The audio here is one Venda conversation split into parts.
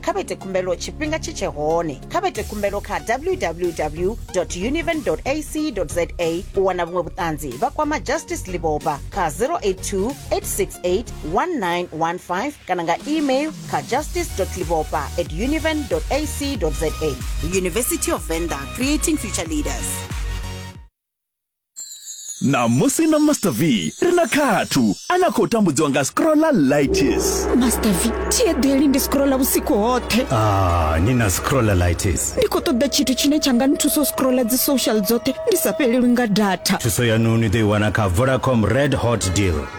kha vha ite khumbelo tshifhinga tshi tshe hone kha vha ite khumbelo kha www univen ac za u wana vhuṅwe vhuṱanzi vha kwama justice liboba kha 082 868 1915 kana nga email kha justice liboba at univen ac za university of venda creating future leaders Ṋamusi na Master V ri na khathu a na khou tambudziwa nga scrolla lights. Master V thi eḓeli ndi scrolla vhusiku hoṱhe. Ah, ni na scrolla lights. Ndi khou ṱoḓa tshithu tshine tsha nga nthusa u scrolla dzi social dzoṱhe ndi sa fhelelwi nga data. Thuso yanu ni ḓo i wana kha Vodacom Red Hot Deal.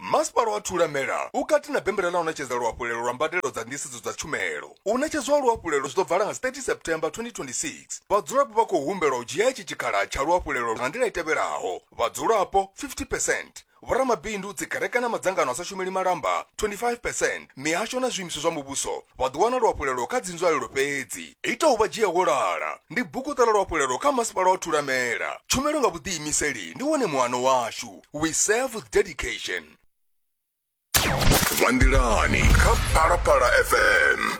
Masipala wa Thulamela u kati na bembela ḽa u ṋetshedza luhafhulelo lwa mbadelo dza nḓisedzo dza tshumelo. U ṋetshedzwa ha luhafhulelo zwi ḓo vala nga 30 September 2026. Vhadzulapo vha khou humbelwa u dzhia itshi tshikhala tsha luhafhulelo nga nḓila i tevhelaho, vhadzulapo 50 percent, vhoramabindu, dzikereke na madzangano a sa shumeli malamba 25 percent, mihasho na zwiimiswa zwa muvhuso vha ḓo wana luhafhulelo kha dzinzwalelo fhedzi. Ita u vha dzhia wo lala ndi buguṱa ḽa luhafhulelo kha Masipala wa Thulamela. Tshumelo nga vhuḓiimiseli ndi wone muano washu. we serve with dedication vha nḓilani kha phalaphala fm